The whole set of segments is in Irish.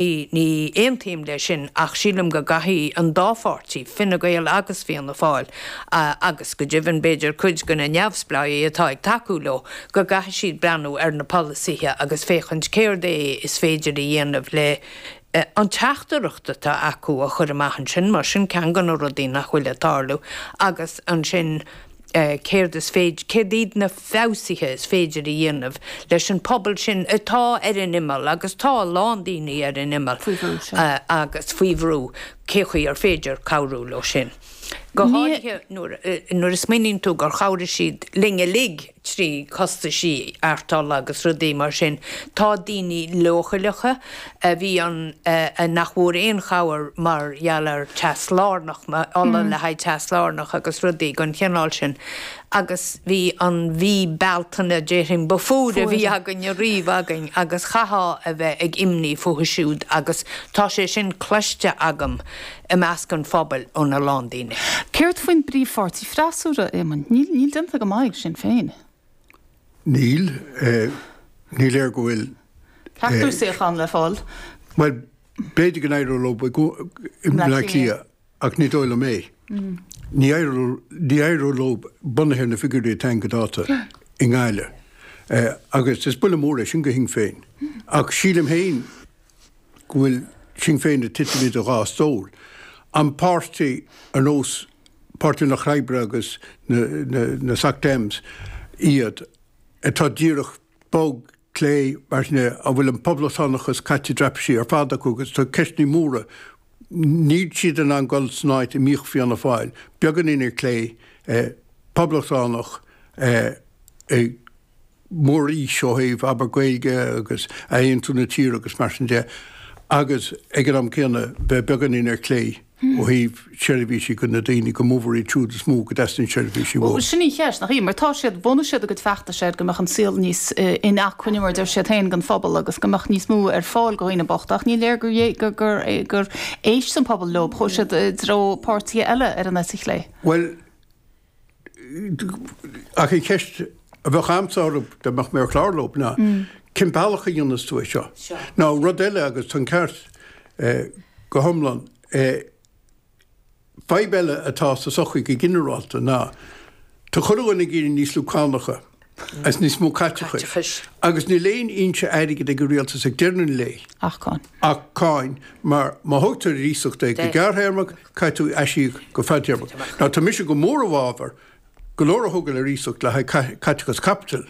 Ní aontaím leis sin ach sílim go gcaithfidh an dá pháirtí, Fine Gael agus Fianna Fáil, agus go deimhin b'fhéidir cuid de na neamhspleáigh atá ag tacú leo, go gcaithfidh siad breathnú ar na polasaithe agus féachaint céard é is féidir a dhéanamh le an teachtaireacht atá acu a chur amach ansin mar sin ceann de na rudaí nach bhfuil ag tarlú agus ansin céard is féidir, céard iad na feabhsuithe is féidir a dhéanamh leis an pobal sin atá ar an imeall agus tá a lán daoine ar an imeall agus faoi bhrú, cé chaoi ar féidir cabhrú leo sin. Go háirithe nuair a smaoiníonn tú gur chabhraigh siad linn uilig trí chostaisí ardtola agus rudaí mar sin. Tá daoine leochaileacha a bhí ann nach bhfuair aon chabhair mar gheall ar teas lárnach, ola le haghaidh teas lárnach agus rudaí den chineál sin. Agus bhí an mhí Bealtaine, déarfainn, ba fuaire a bhí againn ariamh againn agus chaithfeá a bheith ag imní fúthu siúd agus tá sé sin cloiste agam i measc an phobail óna lán daoine. Céard faoin bpríomhpháirtí freasúra, Éamon? Níl déanta go maith ag Sinn Féin. Níl. Ní léir go bhfuil. ceachtar suíochán le fáil. Bhuel, b'fhéidir go n-éireodh leo i mBleá Cliath ach ní dóigh liom é. Ní éireoidh leo, bunaithe ar na figiúirí atá againn go dáta, i nGaillimh. Agus is buille mór é sin go Sinn Féin. Ach sílim féin go bhfuil Sinn Féin ag titim idir dhá stól. An páirtí ar nós páirtithe an Lucht Oibre agus na SocDems iad, atá díreach, bog, clé, mar sin de, a bhfuil an poblachtánachas caite i dtraipisí ar fad acu agus tá ceisteanna móra, níl siad in ann dul san áit a mbíodh Fianna Fáil, beagáinín ar clé, poblachtánach, ag. mór is ó thaobh abair Gaeilge agus athaontú na tíre agus mar sin de agus ag an am céanna bheith beagáinín ar clé ó thaobh seirbhísí go na daoine go mórmhór iad siúd is mó go dteastaíonn seirbhísí uathu. Sin an cheist, nach í? Mar tá siad, bhunaigh siad a gcuid feachtais air go mbeadh an saol níos in acmhainne mar a deir siad féin don phobal agus go mbeadh níos mó ar fáil do dhaoine bochta ach ní léir gur éist an pobal leo, chuaigh siad i dtreo páirtithe eile ar an eite chlé. Bhuel, Ach an cheist a bheadh agamsa dá mbeadh mé ar chlár leo ná cén bealach a dhéanfas tú é seo? Nó rud eile agus tá an ceart go hiomlán, fadhb eile atá sa tsochaí go ginearálta ná tá cuid againn ag iarraidh níos lú cánacha as níos mó caiteachais, agus níl aon fhoinse airgid ag an Rialtas ag deireadh na lae. ach cáin. ach cáin, mar má thógtar ar iasacht é go gearrthéarmach, caithfidh tú aisíoc go fadtéarmach. Now tá mise go mór i bhfabhar go leor a thógáil ar iasacht le haghaidh caiteachas caipitil,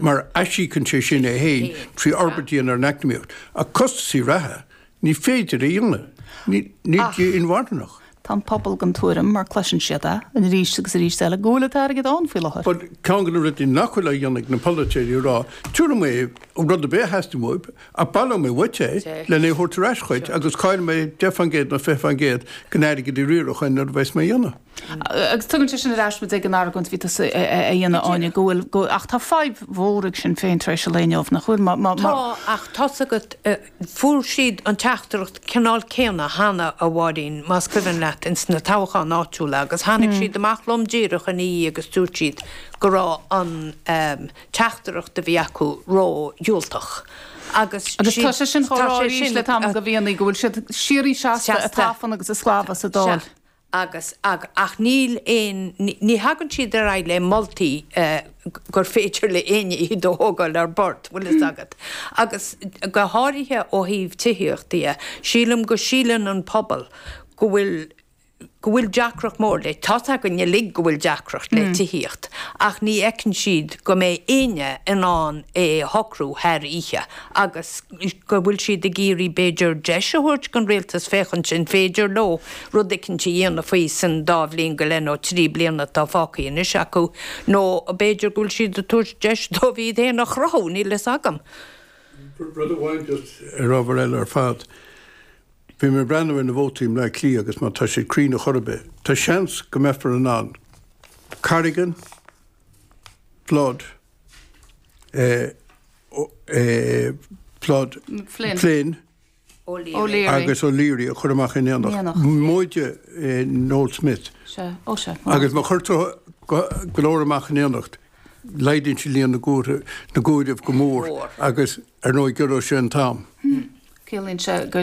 mar aisíocann sé sin é féin trí fhorbairt a dhéanamh ar an eacnamaíocht, ach costasaí reatha, Ní féidir a dhéanamh. Níl sé inmharthanach. Tá an pobal den tuairim, mar cloiseann siad é arís agus arís eile, go bhfuil an t-airgead ann faoi láthair. Bhuel, ceann de na rudaí nach bhfuil á dhéanamh ag na polaiteoirí a rá, tiúrfaidh mé rud ar bith a theastaíonn uaibh, ach baileoidh mé uait é lena a thabhairt ar ais dhuit agus caillfidh mé deich faoin gcéad nó fiche faoin gcéad den airgead sin á riaradh an uair a bheas mé a dhéanamh. Agus tugann sé sin ar ais muid ag an argóint a bhí tusa a dhéanamh, Áine, go bhfuil, ach tá fadhb mhór ag Sinn Féin tar éis an lae inniu, nach bhfuil? Tá, ach tá's agat, Fuair siad an teachtaireacht cineál céanna cheana, a Mháirín, más cuimhin leat, ins na toghcháin áitiúla agus tháinig siad amach lom díreach ina dhiaidh agus dúirt siad go raibh an teachtaireacht a bhí acu ró-dhiúltach agus Agus tá sé sin an chaoi arís le tamall gomh maith go bhfuil siad síoraí seasta ag tafann agus ag sclamhadh sa Dáil. agus, ach níl aon ní, ní thagann siad ar aghaidh le moltaí gur féidir le éinne iad a thógáil ar bord, bhfuil fhios agat. Agus go háirithe ó thaobh tithíochta dhe, sílim go síleann an pobal go bhfuil, go bhfuil deacracht mór le, tá's againn uilig go bhfuil deacracht le tithíocht ach ní fheiceann siad go mbeidh éinne in ann é shocrú thar oíche agus go bhfuil siad ag iarraidh b'fhéidir deis a thabhairt don rialtas féachaint an féidir leo rud eicínt a dhéanamh faoi san dá bhliain go leith nó trí bliana atá fágtha anois acu, nó b'fhéidir go bhfuil siad ag tabhairt deis dóibh iad féin a chruthú, níl a fhios agam. Rud amháin just ar ábhar eile ar fad, bhí mé ag breathnú ar na vótaí i mBleá Cliath agus má tá siad cruinn a chor ar bith, tá seans go mbeifear in ann Corrigan, Flood, eh, eh, Flood, Flynn. Flynn, agus O'Leary a chur amach in éineacht, móide Noel Smith. Agus má chuirtear go leor amach in éineacht, laghdaíonn sé líon na gcomhaireamh go mór agus ar ndóigh giorróidh sé an t-am. Ciallaíonn sé go